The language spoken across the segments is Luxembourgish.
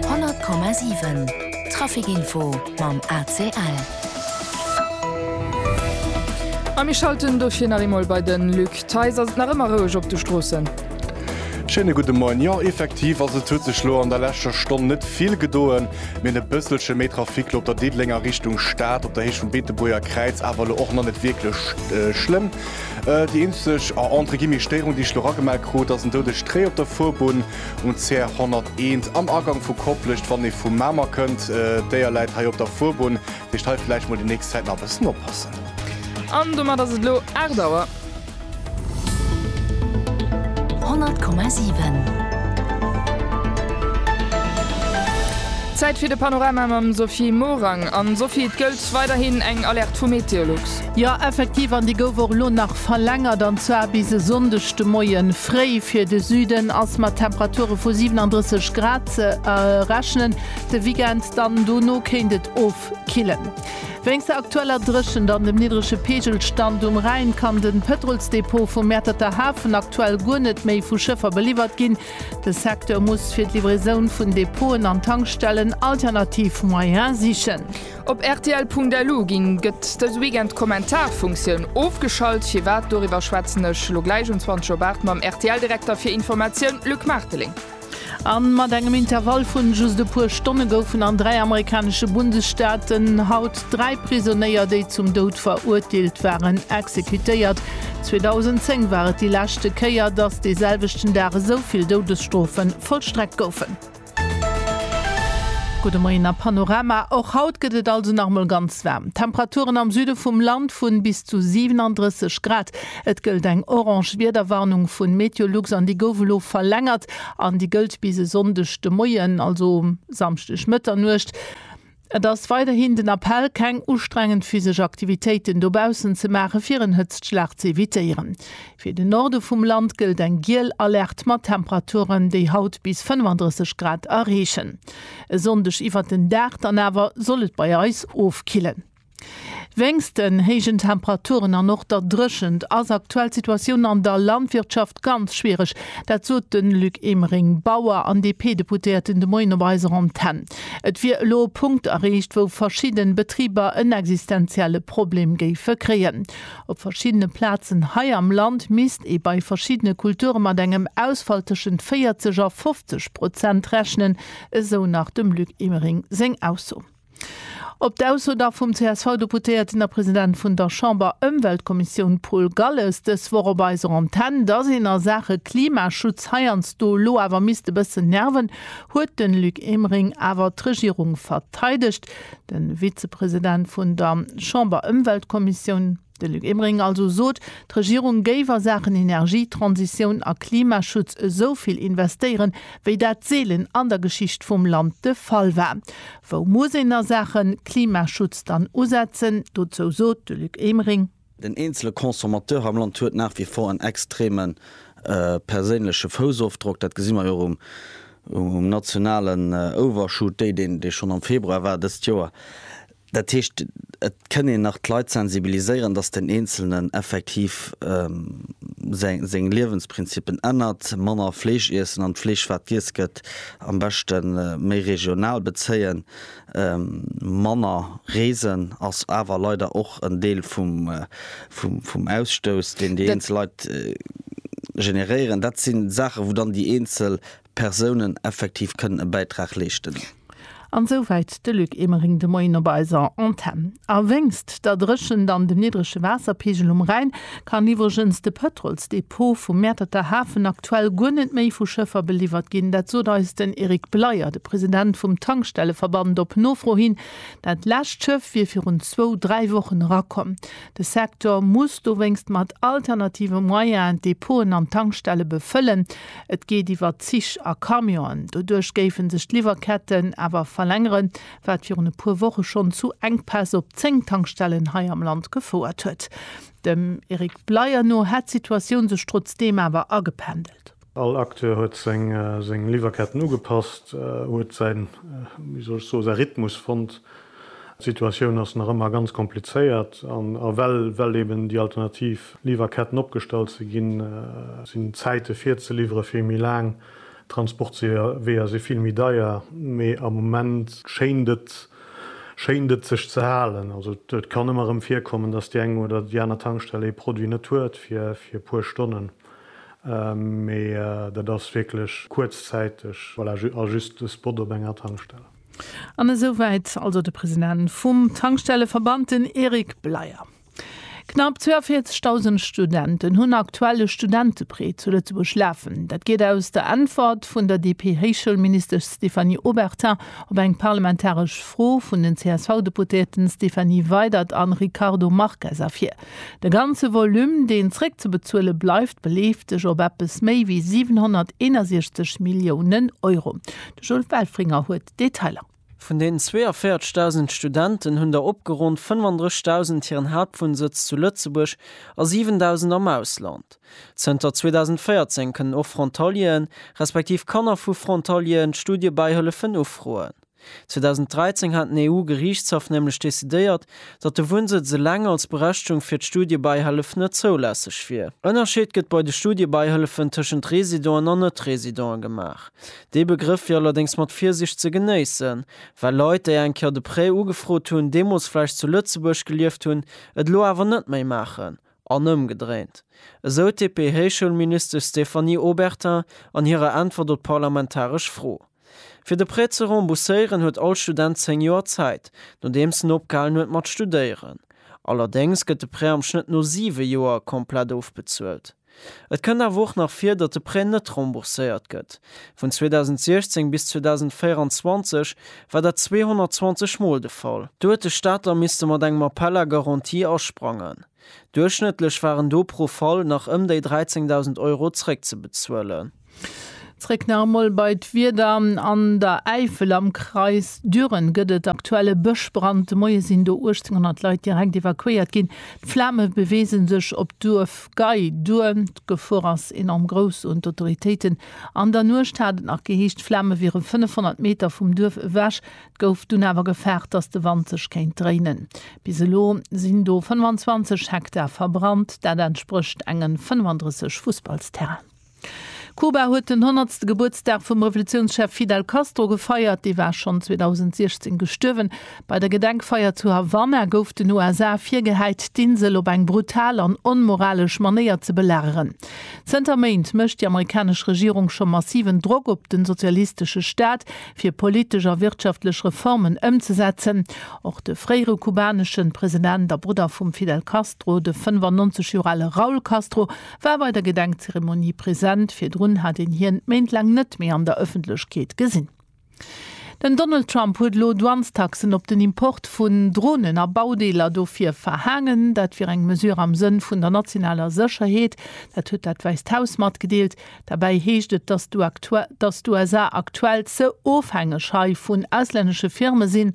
100,7 Trafic Info mam ACL. A mir schalten dofir nach eemol bei de Luc Theis. Ass et nach ëmmer roueg op de Stroossen? Schéine gudde Moien. Jo, effektiv ass et. Et huet sech elo an der leschter Stonn net vill gedoen, mee e bësselche méi Trafic elo op der Diddelenger Richtung Stad, op der Héicht vum Beetebuerger Kräiz, awer elo och nach net wierklech schlëmm. Déi eenzeg, entre guillemets, Stéierung, déi ech elo eragemellt krut, ass en doude Stréi op der Fuerbunn. un d'Zär 101 am Agang vu Koplescht, wann ee vu Mamer kënnt. D'Déier läit hei op der Fuerbunn, dat heescht hei vläicht mol déi nächst Zäit nach e bëssen oppassen. An domat ass et elo 8 Auer. 100,7. Zäit fir de Panorama mam Sophie Morang. An Sophie, et gëllt weiderhin eng Alerte vu Meteolux. Jo, effektiv, an déi gouf och elo nach verlängert, an zwar bis e Sonndeg de Moie fréi. Fir de Süden ass mat Temperature vu 37 Grad ze rechnen. De Weekend dann dono kéint et ofkillen. Wéinst der aktueller Dréchent an dem niddrege Peegelstand um Rhäin kann de Pëtrolsdepot vum Mäerterter Hafen aktuell guer net méi vu Schëffer beliwwert ginn. De Secteur muss fir d'Livraisoun vun Depoten an Tankstellen alternativ Moyene sichen. Op rtl.lu ginn gëtt dëse Weekend d'Kommentarfunktioun ofgeschalt. Firwat? Doriwwer schwätzen ech elo gläich um 20 Uhr 8 mam RTL-Direkter fir Informatioun, Luc Marteling. A mat engem Intervall vun just e puer Stonne goufen an dräi amerikanesche Bundesstaaten haut dräi Prisonéier, déi zum Doud verurteelt waren, exekutéiert. 2010 war et déi leschte Kéier, datt dee selwechten Dag esou vill Doudesstrofe vollstreckt goufen. Gudde Moien a Panorama. Och haut gëtt et also nach emol ganz waarm. Temperaturen am Süde vum Land vu bis zu 37 Grad. Et gëllt eng orange Wiederwarnung vu Meteolux an déi gouf elo verlängert an déi gëllt bis e Sonndeg de Moien, also Samschdeg Mëtternuecht. Et ass weiderhin den Appell, keng ustrengend physesch Aktivitéiten dobaussen ze maachen, fir en Hëtztschlag ze evitéieren. Fir den Norde vum Land gëllt eng giel Alerte mat Temperaturen, déi haut bis 35 Grad erreechen. E Sonndeg iwwert den Dag dann awer soll et bei eis ofkillen. Wéinst den héijen Temperaturen an och der Dréchent ass aktuell d'Situatioun an der Landwirtschaft ganz schwiereg. Dat sot de Luc Emering, Bauer an DP-Deputéierten de Moien op eiser Antenn. Et wier elo e Punkt erreecht, wou verschidde Betriber en existenzielle Problem géife kréien. Op verschiddene Plazen hei am Land misst ee bei verschiddene Kulture mat engem Ausfall tëschent 40 a 50 Prozent rechnen, esou nach dem Luc Emering seng Ausso. Op d'Ausso da vum CSV-Deputéierten a President vun der Chamber-Ëmweltkommissioun Paul Galles dës Woch op eiser Antenn, dass een a Saache Klimaschutz heiansdo elo awer misst e bëssen nerven, huet de Luc Emering awer d'Regierung verteidegt. De Vizepresident vun der Chamber-Ëmweltkommissioun. De Luc Emering also sot, d'Regierung géif a Saachen Energietransitioun a Klimaschutz esou vill investéieren, wéi dat seelen an der Geschicht vum Land de Fall war. Wou muss een a Saache Klimaschutz dann usetzen? Dozou sot de Luc Emering. Den eenzele Consommateur am Land huet nach wie vor en extreme perséinleche Foussofdrock. Dat gesi mer jo och um nationalen Overshoot, dee schonn am Februar war dëst Joer. Dat heescht, et kënn een nach d'Leit sensibiliséieren, dass den Eenzelnen effektiv seng Liewensprinzippen ännert, manner Fleesch iessen an d'Fleesch, wat giess gëtt, am beschte méi regional bezéien, manner reesen ass awer leider och en Deel vum Ausstouss, deen déi eenzel Leit generéieren. Dat si Saache wou dann déi eenzel Persounen effektiv kënnen e Bäitrag leeschten. An souwäit de Luc Emering de Moien op eiser Antenn. A wéinst der Dréchent an dem niddrege Waasserpeegel um Rhäin kann iwwregens de Pëtrolsdepot vum Mäerterter Hafen aktuell guer net méi vu Schëffer beliwwert ginn. Dat sot eis den Eric Bleyer, de President vum Tankstelleverband, op Nofro hin. Dat lescht Schëff wier virun zwou, dräi Wochen erakomm. De Secteur muss dowéinst mat alternative Moyenen d'Depoten an d'Tankstelle befëllen. Et geet iwwer Zich a Camionen. Doduerch géife sech d'Liwwerketten awer verlängeren, wat virun e puer Woche schonn zu Enkpäss op 10 Tankstellen hei am Land gefouert huet. Dem Eric Bleyer no hätt d'Situatioun sech trotzdeem awer agependelt. All Acteur huet seng Liwwerketten ugepasst, huet säi Rhythmus fonnt. D'Situatioun ass nach ëmmer ganz komplizéiert an a well well eben déi alternativ Liwwerketten opgestallt si ginn, sinn d'Zäite fir ze liwwere vill méi laang, d'Transportweeër si vill méi deier. Mee am Moment schéint et schéint et sech ze halen. Also et kann ëmmer erëm virkommen, datt déi eng oder déi aner Tankstell ee Produit net huet fir fir e puer Stonnen, mee dat ass wierklech kuerzzäiteg, voilà, a just e Spot op enger Tankstell. An esou wäit also de President vum Tankstelleverband, den Eric Bleyer. Knapp 42.000 Studenten hunn aktuell e Studenteprêt zu Lëtzebuerg lafen. Dat geet aus der Äntwert vun der DP-Héichschoulministesch Stéphanie Obertin op eng parlamentaresch Fro vun den CSV-Deputéierten Stéphanie Weydert a Ricardo Marques ervir. De ganze Volume, deen zréckzebezuele bleift, beleeft sech op eppes méi wéi 761 Milliounen Euro. De Jules Welfringer huet d'Detailer. Vun den 42.000 Studenten hunn der opgeronnt 35.000 hiren Haaptwunnsëtz zu Lëtzebuerg a 7.000 am Ausland. Zënter 2014 kënnen och Frontalieren, respektiv Kanner vu Frontalieren, d'Studiebäihëllefen ufroen. 2013 hat den EU-Geriichtshaff nämlech decidéiert, datt de Wunnsëtz eleng als Berechtigung fir d'Studiebäihëllef net zoulässeg wier. Ënnerscheet gëtt bei de Studiebäihëllefen tëschent Residenten an Net-Residenten gemaach. Dee Begrëff wier allerdéngs mat Virsicht ze genéissen, well Leit, déi eng Kéier de Prêt ugefrot hunn, deemools vläicht zu Lëtzebuerg gelieft hunn, et elo awer net méi maachen, an ëmgedréint, esou d'DP-Héichschoulministesch Stéphanie Obertin an hirer Äntwert op d'parlamentaresch Fro. Fir de Prêt ze rembourséieren, huet all Student zéng Joer Zäit, nodeems en opgehalen huet mat studéieren. Allerdéngs gëtt de Prêt am Schnëtt no siwe Joer komplett ofbezuelt. Et kënnt awer och nach vir, datt de Prêt net rembourséiert gëtt. Vun 2016 bis 2024 war dat 220 Mol de Fall. Do huet de Staat da misste mat engem Appel à garantie asprangen. Duerchschnëttlech waren do pro Fall nach ëm déi 13.000 Euro zréckzebezuelen. Zréck nach emol bei d'Wieder, An der Äifel am Kreis Düren gëtt et aktuell e Bëschbrand. De Moie sinn do 1.800 Leit direkt evakuéiert ginn. D'Flame beweese sech op d'Duerf Gei duer. D'Gefor ass enorm grouss, soen d'Autoritéiten. An der Nuecht hat et nach geheescht, d'Flame wiere 500 Meter vum Duerf ewech. Et gouf dunn awer gefaart, datt de Wand sech kéint dréinen. Bis elo sinn do 25 Hektar verbrannt. Dat entsprécht enge 35 Fussballsterrainen. Kuba huet den honnertste Gebuertsdag vum Revolutiounschef Fidel Castro gefeiert. Dee war schonn 2016 gestuerwen. Bei der Gedenkfeier zu Havanna gouf den USA virgehäit, d'Insel op eng brutal an onmoralesch Manéier ze belageren. Zënter Méint mécht déi amerikanesch Regierung scho massiven Drock op de sozialistesche Staat, fir politesch a wirtschaftlech Reformen ëmzesetzen. Och de fréiere kubanesche President a Brudder vum Fidel Castro, de 95 Joer ale Raul Castro, war bei der Gedenkzeremonie present, virdrun hat een hien Méint laang net méi an der Ëffentlechkeet gesinn. Den Donald Trump huet elo Douanestaxen op den Import vun Dronen a Baudeeler dofir verhaangen. Dat wier eng Mesure am Sënn vun der nationaler Sécherheet, dat huet dat Wäisst Haus matgedeelt. Derbäi heescht et, datt d'USA aktuell ze ofhängeg hei vun auslännesche Firme sinn,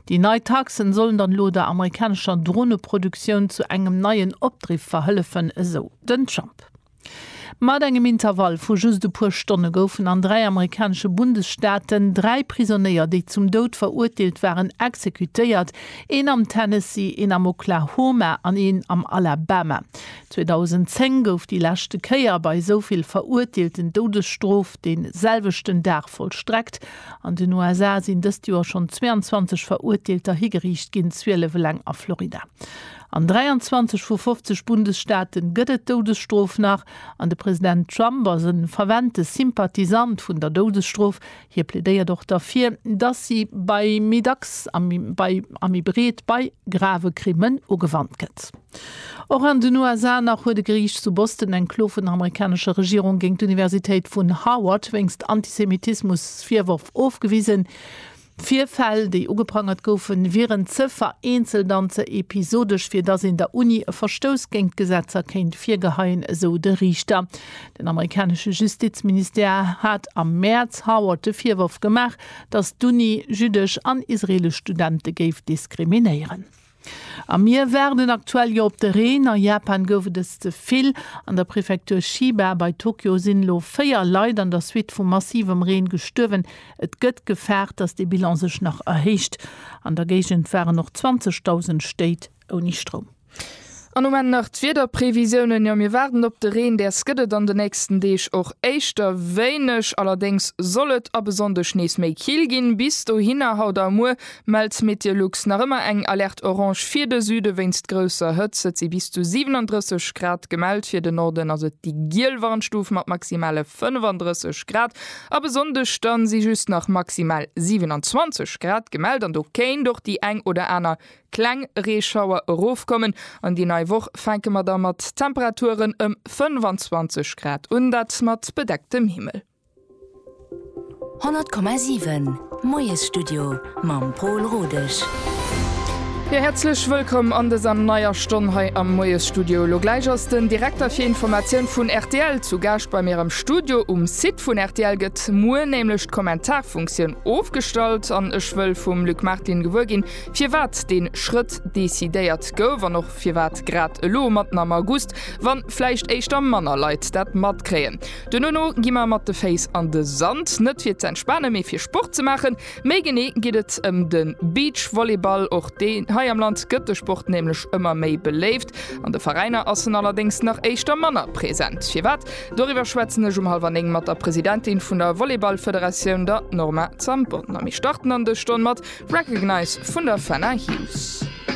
Déi nei Taxen sollen dann elo der amerikanescher Droneproduktioun zu engem neien Opdriff verhëllefen, esou den Trump. Mat engem Intervall vu just e puer Stonne goufen an dräi amerikanesche Bundesstaaten dräi Prisonéier, déi zum Doud verurteelt waren, exekutéiert, een am Tennessee, een am Oklahoma an een am Alabama. 2010 gouf déi leschte Kéier bei esou vill Verurteelten d'Doudesstrof dee selwechten Dag vollstreckt. An den USA sinn dëst Joer schonn 22 Verurteelter higeriicht ginn, 12 eleng a Florida. An 23 vu 50 Bundesstaate gëtt et d'Doudesstrof nach. An de President Trump ass e fervente Sympathisant vun der Doudesstrof. Hie plädéiert och derfir, datt si bei méi dacks a méi breet bei grave Krimmen ugewannt gëtt. Och an den USA nach huet e Geriicht zu Boston eng Klo vun der amerikanescher Regierung géint d'Universitéit vun Harvard wéinst Antisemitismusvirworf ofgewisen. D'Virfäll, déi ugeprangert goufen, wieren ze vereenzelt an ze episodesch, fir datt een der Uni e Verstouss géint d'Gesetzer kéint virgeheien, esou de Riichter. Den amerikanesche Justizministère hat am Mäerz Harvard de Virworf gemaach, datt d'Uni jüddesch an israeelesch Studente géif diskriminéieren. A mir waarden aktuell jo op de Reen. A Japan gouf et es ze vill. An der Prefektur Chiba bei Tokio sinn elo 4 Leit an der Suite vu massivem Reen gestuerwen. Et gëtt gefaart, dass de Bilan sech nach erhéicht. An der Géigend waren och 20.000 Stéit ouni Stroum. An um Enn nach d'Wiederprevisiounen, jo mir waarden op de Reen, däers gëtt et an de nächsten Deeg och éischter wéineg, allerdéngs soll et ab e Sonndeg nees méi kill ginn. Bis dohinner, haut a muer, mellt Meteolux nach ëmmer eng Alerte Orange fir de Süde wéinst grousser Hëtzt. Et si bis zu 37 Grad gemellt, fir den Norden ass et déi giel Warnstuf mat maximale 35 Grad. Ab e Sonndeg dann si just nach maximal 27 Grad gemellt an do kéint och déi eng oder aner Kleng Reeschauer erofkommen an déi nei Woch fänke mer da mat Temperaturen ëm 25 Grad un, dat mat bedecktem Himmel. 100,7 Moiesstudio mam Pol Rodesch. Jo, häerzlech wëllkomm an dëser neier Stonn hei am Moiesstudio. Elo gläich ass den Direkter fir Informatioun vun rtl zu Gaascht bei mir am Studio. Um Site vun rtl gëtt muer nämlech d'Kommentarfunktioun ofgestallt an ech wëll vum Luc Martin gewuer ginn, Firwat dee Schrëtt decidéiert gouf an och firwat grad elo matten am August, wann vläicht éischter manner Leit dat matkréien. Duerno gi mer mat de Féiss an de Sand, net fir ze entspanen, mee fir Sport ze maachen. Méi genee geet et ëm de Beachvolleyball. Och dee hei am Land gëtt de Sport nämlech ëmmer méi beléift. An de Veräiner ass en allerdéngs nach éischter manner present. Firwat? Doriwwer schwätzen ech um halwer néng mat der Presidentin vun der Volleyballfederatioun, der Norma Zambon, a mir starten an dës Stonn mat Recognize vun der Fenna Hughes.